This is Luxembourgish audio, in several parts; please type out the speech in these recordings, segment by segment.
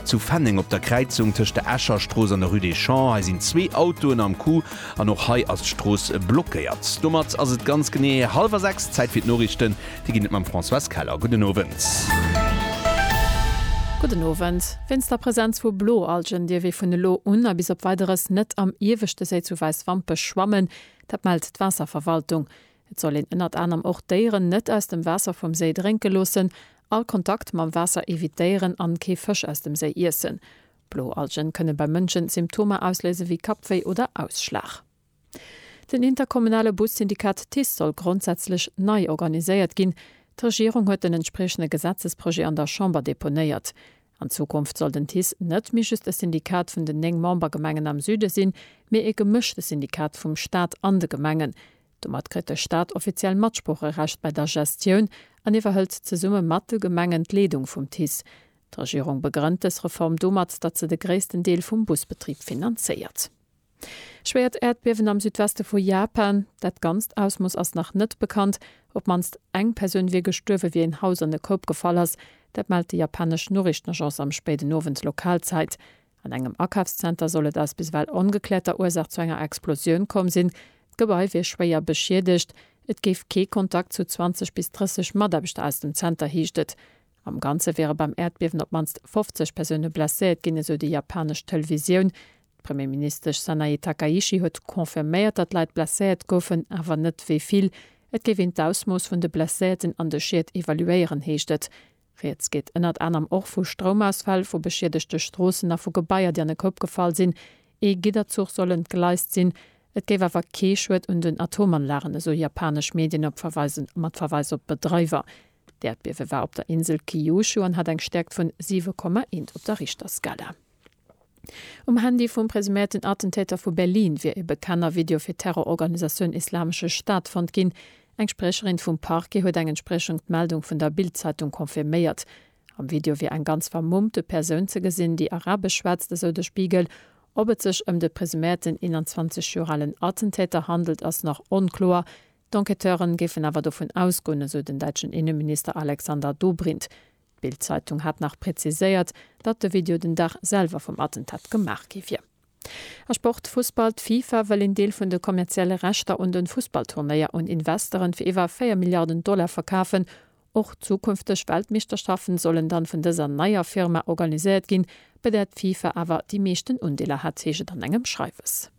Zu Fenneng op der Kräizung tëscht der Escher Strooss an der Rue des Champs, hei sinn zwee Autoen am Coup an och hei ass d'Strooss blockéiert. Domat ass et ganz genee hallwer 6, Zäit fir d'Noriichten, déi ginn et mam Françoise Keller. Gudden Owend. Gudden Owend. Wéinst der Presenz vu Bloalgen dierf ee vun elo un a bis op Weideres net am ieweschte Séi zu Wäiswampech schwammen. Dat mellt d'Waasserverwaltung. Et soll een ënnert anerem och d'Déieren net aus dem Waasser vum Séi drénke loossen, all Kontakt mam Waasser evitéieren an kee Fësch aus dem Séi iessen. Blo Algen kënne beim Mënschen Symptomer ausléise wéi Kappwéi oder Ausschlag. Den interkommunale Bussyndikat TICE soll grondsätzlech nei organiséiert ginn. D'Regierung huet den entspriechende Gesetzesprojet an der Chamber deponéiert. An Zukunft soll den TICE net méi just e Syndikat vun den 9 Membergemengen am Süde sinn, mee e gemëschte Syndikat vum Staat an de Gemengen. Domat kritt de Staat offiziell Matsproocherecht bei der Gestioun an iwwerhëlt zesumme mat de Gemengen d'Leedung vum TICE. D'Regierung begrënnt dës Reform domat, datt se de gréissten Deel vum Busbetrib finanzéiert. Schwéiert Äerdbiewen am Südweste vu Japan, Dat ganzt Ausmooss ass nach net bekannt. Op d'mannst eng Persoun wier gestuerwe wéi en Haus an e Koup gefall ass. Dat mellt déi japanesch Noriichtenagence am spéiden Owend Lokalzäit. An engem Akafszenter soll et aus biswell ongekläerter Ursaach zu enger Explosioun komm sinn. D'Gebai wier schwéier beschiedegt. Et géif kee Kontakt zu 20 bis 30 Mataarbechter aus dem Zenter, heescht et. Am Ganze wiere beim Äerdbiewen op d'mannst 50 Persoune blesséiert ginn, esou déi japanesch Televisioun. D'Premierministesch Sanae Takaichi huet confirméiert, datt Leit blesséiert goufen, awer net wéi vill. Et géif een d'Ausmooss vun de Blesséierten an de Schied evaluéieren, heescht et. Rieds geet ënnert anerem och vu Stroumausfäll, vu beschiedegte Stroossen a vu Gebaier, déi an e Koup gefall sinn. Ee Gidderzuch soll entgleist sinn. Et géif awer kee Schued un den Atomanlagen, esou japanesch Medien op Verweisen mat Verweis op Bedreiwer. D'Äerdbiewe war op der Insel Kyushu an hat eng Stäerkt vun 7,1 op der Richterskala. Um Handy vum presuméierten Attentäter vu Berlin wier e bekannter Video fir d'Terrororganisatioun Islamesche Staat fonnt ginn. Eng Spriecherin vum Parquet huet eng Entspriechung d'Meldung vun der Bild-Zeitung confirméiert. Am Video wier eng ganz vermummte Persoun ze gesinn, déi arabesch schwätzt, esou de Spiegel. Ob et sech ëm de presuméierten 21 Joer alen Attentäter handelt, ass nach onkloer. D'Enquêteuren géifen awer dovun ausgoen, esou den däitschen Inneminister Alexander Dobrindt. D'Bild-Zeitung hat nach präziséiert, datt de Video den Dag selwer vum Attentat gemaach gi wier. A Sport, Fussball, D'FIFA wëll een Deel vun de kommerzielle Rechter un de Fussballturnéier un Investeren fir iwwer 4 Milliarden Dollar verkafen. Och zukünfteg Weltmeeschterschaften sollen dann vun dëser neier Firma organiséiert ginn, Bei där d'FIFA awer déi meeschten Undeeler hat, heescht et an engem Schreiwes.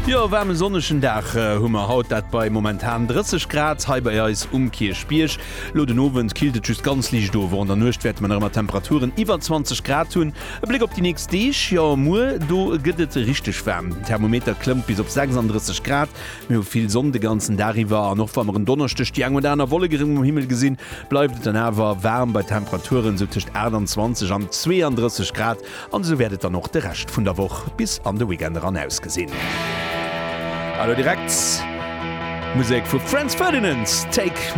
Jo, e waarmen sonnegen Dag hu mer haut, dat bei momentan 30 Grad hei bei eis um Kierchbierg. Lo den Owend killt et just ganz liicht of, och an der Nuecht wäerte mer nach ëmmer Temperaturen iwwer 20 Grad hunn. E Bléck op déi nächst Deeg, jo muer do gëtt et richteg waarm, den Thermometer klëmmt bis op 36 Grad. Mir hu vill Sonn de ganzen Dag iwwer an och wa mer en Donneschdeg déi eng oder aner Wollek erëm um Himmel gesinn, bleift et dann awer waarm bei Temperaturen esou tëscht 28 an 32 Grad an esou wäert et dann och de Rescht vun der Woch bis an de Weekend eran ausgesinn. A lo direkt Musek vu Franz Ferdinand, Take.